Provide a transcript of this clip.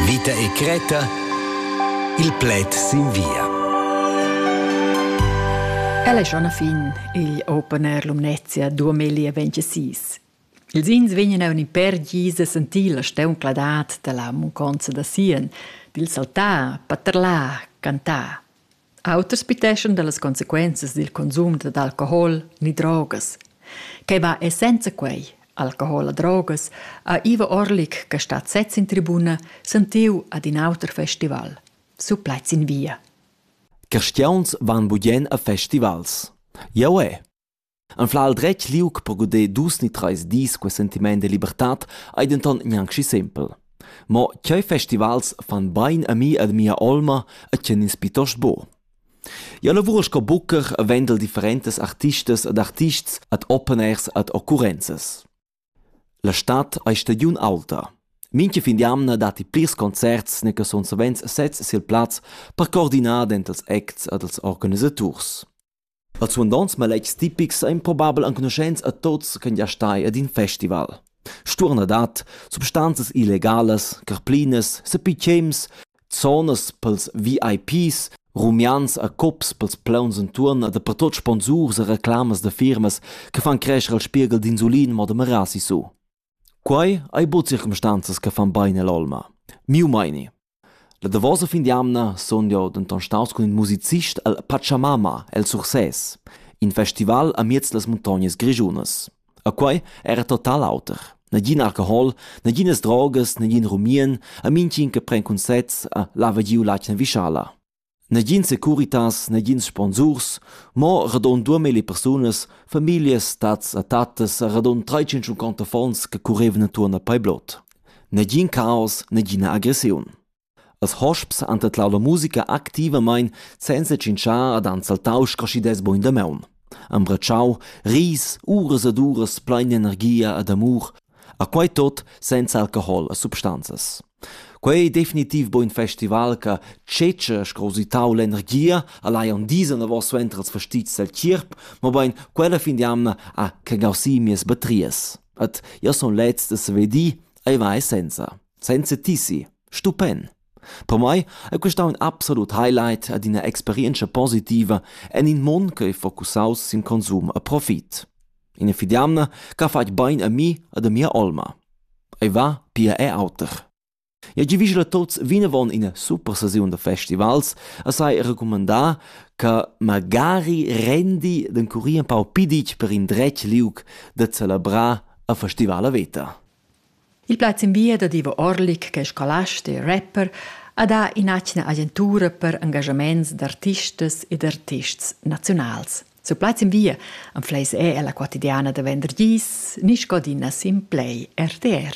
Vita e cretta Il pled sin via. Ella è schon a fin il Open Air Lumnezia 2026. Ils ins vegnan a un per gisa sentir la steuncladat da la munconza da Sien, dil saltar, paterlar, cantar. Auters piteschan dallas consequenzas dil consum dad alcohol ni drogas. Quei va e senza quei, alcohol e drogas, ha Ivo Orlik, che stat sez in tribuna, sentiu ad in auter festival. Su plaids in via. Cristiauns van budien a festivals. Jau è. Anflar il dretg liug per guder dus ni treis dis quei sentiment de libertad ei denton gnanc schi sempel. Mo tgei festivals fan bein a mi ed mia olma e tgien ins pietost buc? Jau lavur sco bucher e vendel differentas artistas ed artists ad openers ed occurrenzas. La stad ei stagiun aulta. Mincha fin d'jamna datti plirs concerts ne che sun savens sezs sil plaz per coordinar dentals acts ed als organisaturs. Als suandonts maletgs tipics ein probabel enconuschents a tuts ch'ein gia stai ad in festival. Sturnadad, substanzas illegalas, carplinas, sepitschems, zonas pils VIPs, rumians e cups pils plauns entuorn e dapertut sponsurs e reclamas da firmas che fan crescher il spieghel d'insulin mo da merar sissu. Quei ei buc circumstanzas che fan bein all'olma. Miu meini. La davosa fin d'jamna sun jau denton staus cun in musicist el Pachamama el Sursès, in festival amiez las muntognas grischunas. E quei era total auter. Nagin alcohol, naginas drogas, nagin rumien, e mintgin che pren cunsets e lava giu l'atgna vischala. Negin securitas, negins sponsurs, mo radund duamilli persunas, famiglias, tats e tattas e radund trais-cinquanta affons che currevan entuorn a Paiblot. Negin caos, negina agressiun. Als hosps han tedlau la musica activamein senza tschintschar ad han saltau scraschidas buin damaun. Han bratschau ris, uras ed uras plein energia ed amur, a quei tot senza alcohol e substanzas. Quei ei definitiv bein in festival che tschetscha sco usitau l'energia a laion disa davos suenter ils fastizs del tgierp, mobein quella fin d'jamna ha che gausi mias batrias. Et io sun leds da saver dir, ei vai senza. Senza ti si. Stupend. Per mai è questa un absolut highlight ad ina experienza positiva en in mond che è focusaus sin konsum e profit. Ina fidamna ch'ha fatg bain a mi ed a mia olma. Ei va pia er auter. Eu giavischel a tuots vinavon ina super sesiun da festivals e sai recumandar che magari rendi d'encurir empau piditg per indretg liug da celebrar a festivala veta. Il plaz in via dad Ivo Orlik ch'è scolast e rapper ha dà in'atgna agentura per engaschaments d'artistas ed artists naziunals. Sur plaz in via anfleis è ella quotidiana da venderdis ni scadina sin play RTR.